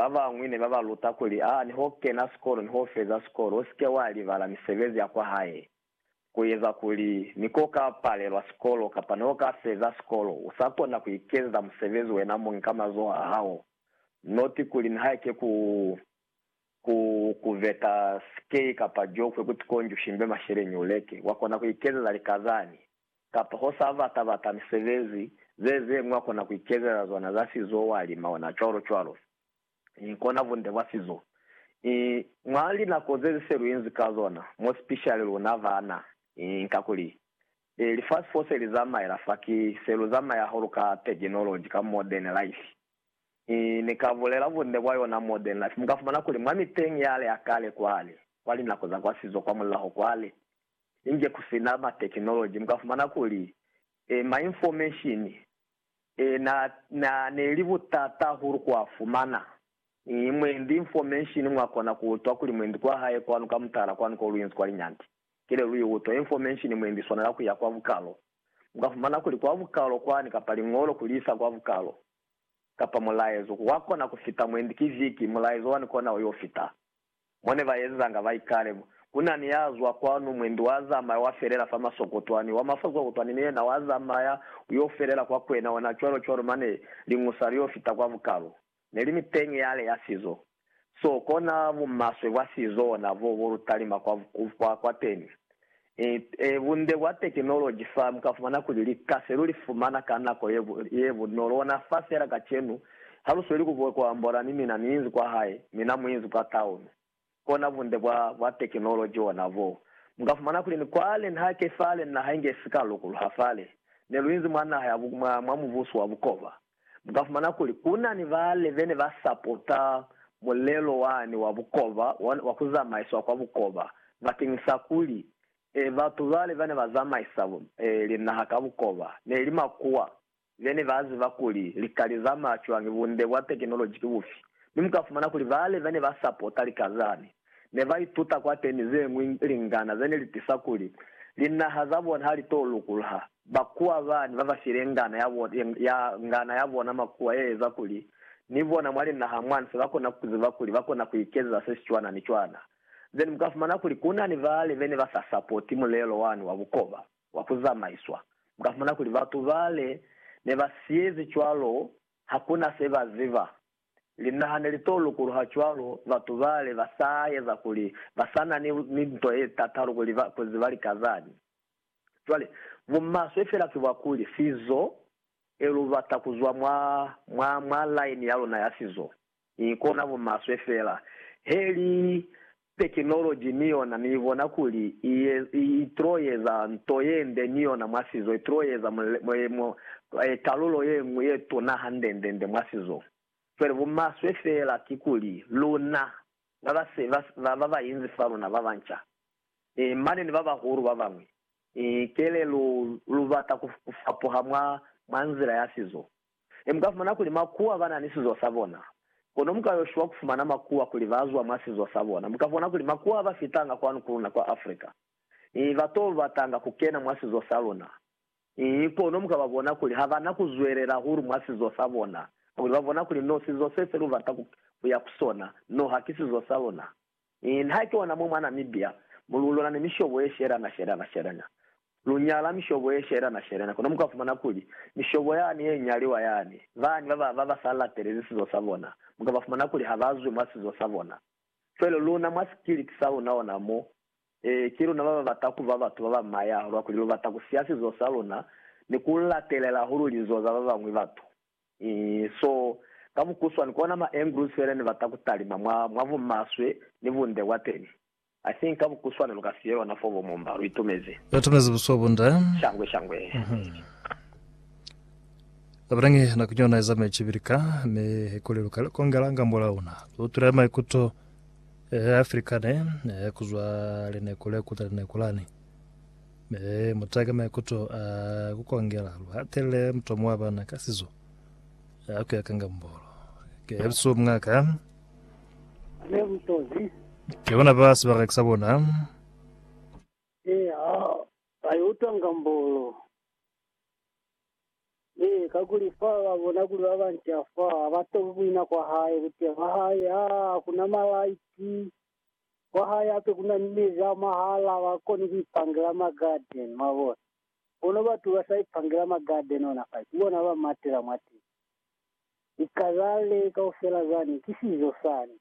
Ba bañwi ne ba ba luta kuli, A ni ho kena sikolo ni ho feza sikolo, u si ke wa libala misebezi ya kwahae. Ku eza kuli, ni ko ka palelwa sikolo kapa ni ho ka feza sikolo, u sa kona ku ikezeza musebezi wena muñi ka mazoho a hao. Noti kuli, nihaike ku, ku, ku veta sikei kapa jokwe, ku ti konjushimbe masheleñi uleke, wa kona ku ikezeza likazani. kapa ho sa bata-bata misebezi ze zeñwi wa kona ku ikezeza zona za sizo wa lima ona cwalo cwalo. I kona bunde bwa sizo. I mwa linako zezi se lu inzi ka zona, mo sipishali luna bana, i kakuli e lifasi fo se li zamaela fa ki se lu zamaya hahulu ka tekinoloji, ka modern life. I ni ka bulela bunde bwa yona modern life, mu ka fumana kuli mwa miteñi yale ya kale kwale, kwa linako za kwa sizo kwa mulaho kwale, Inge ku si na ma technology, mu ka fumana kuli, eh, ma information, eh, na, na, ne li butata hahulu ku a fumana. Eh, mwendi information mwa kona ku utwa kuli mwendi kwa hae kwanu ka mutala kwanu ko lu inzi kwa linyandi, ki le lu i utwa. Information mwendi i swanela ku ya kwa bukalo. Mu ka fumana kuli kwa bukalo kwani, kapa liñolo ku li isa kwa bukalo, kapa mulaezo, wa kona ku fita mwendi ki viki, mulaezo wani kona o yo fita. Mo ne ba ezanga ba ikale, Ku na ni ya zwa kwanu, mwendi wa zamaya wa felela fa masokotwani, wa mafokokotwani ni yena wa zamaya u yo felela kwa kwena ona cwalo-cwalo, mane liñusa li yo fita kwa bukalu. Ne li ni peñi yale ya sizo so, kona bumaswe bwa sizo ona bo bo lu talima kwa, kwa, kwateni. Ee, bunde bwa tekinoloji fa mu ka fumana kuli lika se lu li fumana ka nako ye bunolo ona fa fela kacenu. Ha lu sweli ku bwa ku ambola ni mina ni inzi kwa hae, mina mu inzi kwa taunu. Kona bunde bwa, bwa tekinoloji ona boo. Mu ka fumana kuli ni kwale, ni hake fale, ni naha inge si ka lukuluha fale. Ne lu inzi mwa naha ya, mwa, mwa mubuso wa bukoba. Mu ka fumana kuli ku na ni bale be ne ba sapota mulelo wani wa bukoba, wa ku zamaiswa kwa bukoba, bakeñisa kuli, e, batu bale ba ne ba zamaisa linaha ka bukoba ne li makuwa be ne ba ziba kuli lika li zamaya cwañi, bunde bwa tekinoloji ki bufi. Mi mu ka fumana kuli bale be ne ba sapota lika zani, ne ba ituta kwateni ze ñwi lingana ze ne li tisa kuli linaha za bona ha li to lukulha. Bakuwa ba ne ba ba file ngana ya bona, ya, ngana ya bona makuwa ye eza kuli ni bona mwa linaha mwa nse ba kona ku ziba kuli ba kona ku ikezeza se si cwana ni cwana. Then mu ka fumana kuli ku na ni bale be ne ba sa sapoti mulelo wani wa bukoba wa ku zamaiswa. Mu ka fumana kuli batu bale ne ba siyezi cwalo ha ku na se ba ziba. Linaha ne li to lukuluha cwalo batu bale ba sa eza kuli ba sa na ni, ni nto ye tatalu kuli ba, kuli ba lika zani. Cwale, bumaswe fela ki bwa kuli, sizo, e lu bata ku zwa mwa, mwa, mwa laini ya luna ya sizo. I kona bumaswe fela. He li, Tekinoloji ni yona ni bona kuli i tl'o eza nto ye nde ni yona mwa sizo, i tl'o eza mulimo, kalulo ye ñwi ye tuna hande-nde-nde mwa sizo. Cwale bumaswe fela ki kuli luna ba ba se ba ba ba inzi fa luna, ba banca, mane ni ba bahulu ba bañwi, kele lu, lu bata ku fapuha mwa, mwa nzila ya sizo, Ne mu ka fumana kuli makuwa ba na ni sizo sa bona. Kono mu ka yo shwa ku fumana makuwa kuli ba zwa mwa sizo sa bona. Mu ka bona kuli makuwa ba fitanga kwanu ku luna kwa Africa. Ii, ba t'o batanga ku kena mwa sizo sa luna. Ii, kono mu ka ba bona kuli ha ba na ku zwelela hahulu mwa sizo sa bona, kakuli ba bona kuli no sizo se se lu bata ku ya ku sona, no ha ki sizo sa luna. Mi na ki ona mo mwa Namibia mo lu lona ni mishobo ye shelana shelana shelana. Lu nyala mishobo ye shelana shelana, kono mu ka fumana kuli mishobo yani ye nyaliwa yani, bani ba ba, ba ba sa latelezi sizo sa bona, mu ka ba fumana kuli ha ba zwi mwa sizo sa bona. Cwale luna mwa sikiliti sa luna ona mo, ee, ki luna ba ba bata ku ba batu ba ba maya hahulu kakuli lu bata ku siya sizo sa luna ni ku latelela hahulu lizo za ba bañwi batu. So, ka mukuswani, kona ma Andrews fela ne bata ku talima mwa, mwa bumaswe ni bunde bwa teñi. I think ka mukuswani lu ka siye yona foo, bo Mumba. Lu itumezi. Lu itumezi buso bunde. Shangwe, shangwe. Kabelangi nako yona iza meci pili ka, mi kuli lu ka li kongela ngambo la una. Lu utwile maikuto a Afrika ne, kuzwa lineko le kuta lineko lani. Mi muta ka maikuto a ku kongela, lu hatelele mutomo wa bana ka sizo ya ku ya ka ngambolo. Ke elusu mwa ka. Ne mutozi. Ke bona ba sibaraki sa bona. E ha ba yo utwa ngambolo. E, kakuli fa ba bona kuli ba banci a fa, ha ba tobi buina kwa hae, buteya bwa hae, aa, hakuna malaiti. Kwa hae hape kuna ni mezi a mahala a ba koni ku ipangela ma garden, mwabona. Kono batu ba sa ipangela ma garden ona fa, ki bona ba matela mwateni. Ni kazale kaufela zani, ki sizo sani.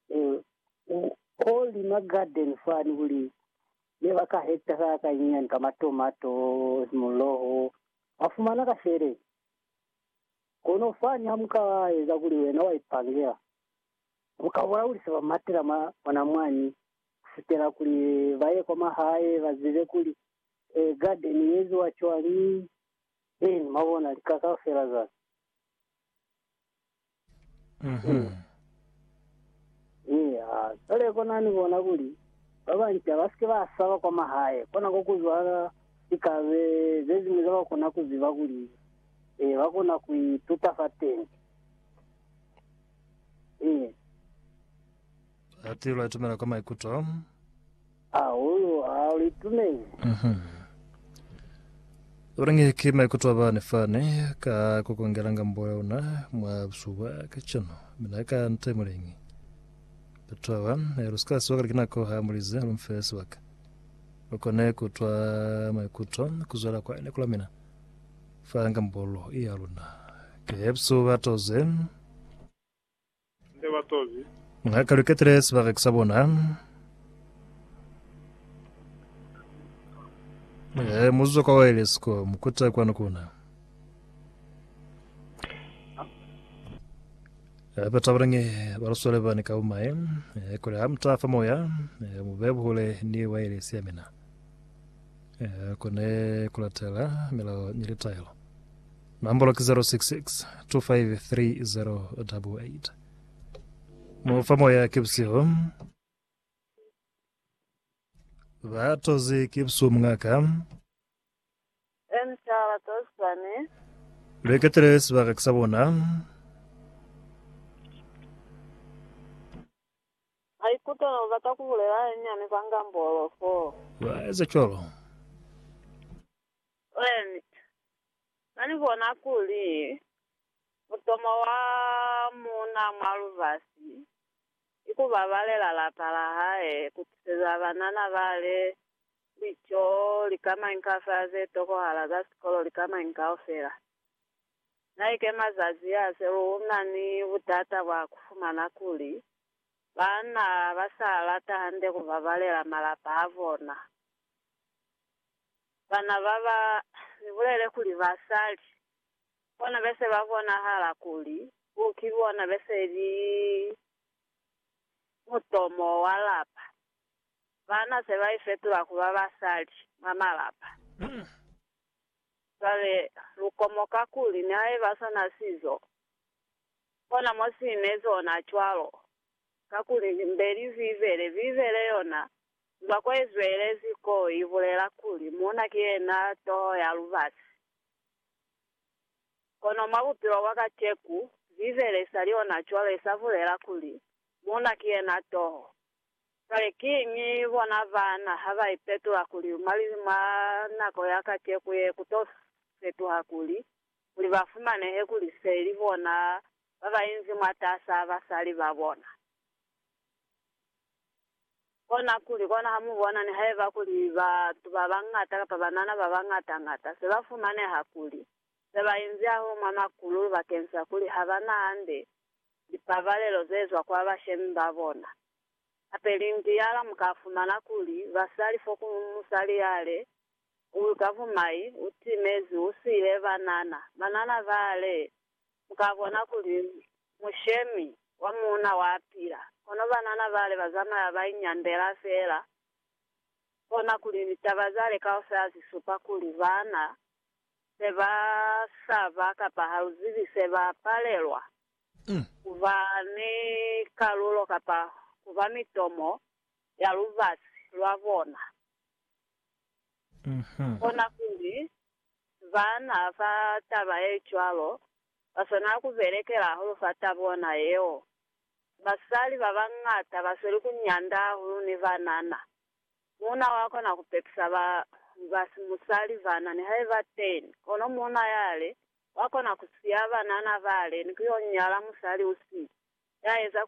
Ewe, u, ko li ma garden fani kuli, ne ba ka hekta sa ka nyinyani ka ma tomato, muloho, wa fumana ka sheleni. Kono fani ha mu ka eza kuli wena wa ipangela, Buka bwa kuli se ba matela mwa bona mwani ku fitela kuli ba ye kwa mahae ba zibe kuli garden ye eziwa cwani, then mwabona lika kaufela za Eya, cwale kona ni bona kuli ba banci ha ba sike ba saba kwa mahae, kona ko ku zwala lika ze ze ziñwi za ba kona ku ziba kuli ba kona ku ituta fateni. Ee. Ati lu atumela kwa maikuto. Hahulu ha lu itumeli. Mhm. Ulangi ki maikuto a bani fani ka kukongela ngambo ya una mwa busuku bwa kacenu. Mina ka nte mulingi. Batu awa, eh, lu sika siwa kali ki nako ha mulize lu mfe sibaka. Lu kone kutwa maikuto kuzwela kwa ene kula mina. Fa ngambolo ya luna. Kepsu ba toze. Ne ba toze. Nga ka lu ketile sibaka sa bona. Ee, mu zwa kwa wireless ko, mu kuta kwanu kuna. Eh, ba tabalange ba lu swale bani ka umae. Eh, kule ha mu tafa moya, eh, mu be buhule ni wireless ya mina. ku ne ku latela milao ni litaelo. Nombolo ki 066 253088. Mufa moya ki busihu. Ba tozi ki busihu mungaka. Emtala tosani. Lweketele sibaka ki sa bona. Maikuto ne u bata ku bulela halinyani kwa Ngambolo foo. Lwa eza cwalo. Lent. Na ni bona kuli, mutomo wa muuna mwa lubasi, ki ku babalela lapa la hae, ku tiseza banana bale lico, likamañi kaufela ze tokohala za sikolo, likamañi kaufela. Na ikema zazi ya se lu na ni butata bwa ku fumana kuli Baana ba sa lata hande ku babalela malapa a bona. Bana ba ba ni bulele kuli basali bona be se ba bonahala kuli ku ki bona be se li mutomo wa lapa. Baana se ba ifetula ku ba basali mwa malapa. Cwale lu komoka kuli nihaiba sona sizo Kona mo si ne zona cwalo, kakuli Limbeli Bibele, Bibele yona, zwa ko i zwelezi ko i bulela kuli muuna ki yena toho ya lubasi. Kono mwa bupilo bwa kaceku, Bibele i sa li ona cwalo, i sa bulela kuli muuna ki yena toho. Kale kiñi bona baana ha ba ipetula kuli mwa nako ya kaceku ye ku to fetuha kuli kuli ba fumanehe kuli se li bona ba ba inzi mwatas'a basali ba bona. Konakuli, kona ha mu bona nihaiba kuli batu ba bañata kapa banana ba bañata-ñata se ba fumaneha kuli se ba inzi hahulu mwa makululu bakeñisa kuli ha ba na hande lipabalelo ze zwa kwa bashemi ba bona. Hape lintiala mu ka fumana kuli basali fo ku musali yale Uyu Kavumai u timezi u siile banana. Banana ba le, Mu ka bona kuli mushemi wa muuna wa pila. Kono banana ba le ba zamaya ba inyandela feela. Kona kuli litaba za le kaufela zi supa kuli baana se ba saba kapa ha lu zibi se ba palelwa ku ba ni kalulo kapa ku ba mitomo ya lubasi lwa bona. Kona kuli, baana fa taba ye cwalo ba swanela ku belekela hahulu fa ta bona yeo. Basali ba bañata ba sweli ku nyanda hahulu ni banana. Muuna wa kona ku pepesa ba ba si musali bana nihaiba teñi, kono muuna yale wa kona ku siya banana bale ni ku yo nyala musali u si ya eza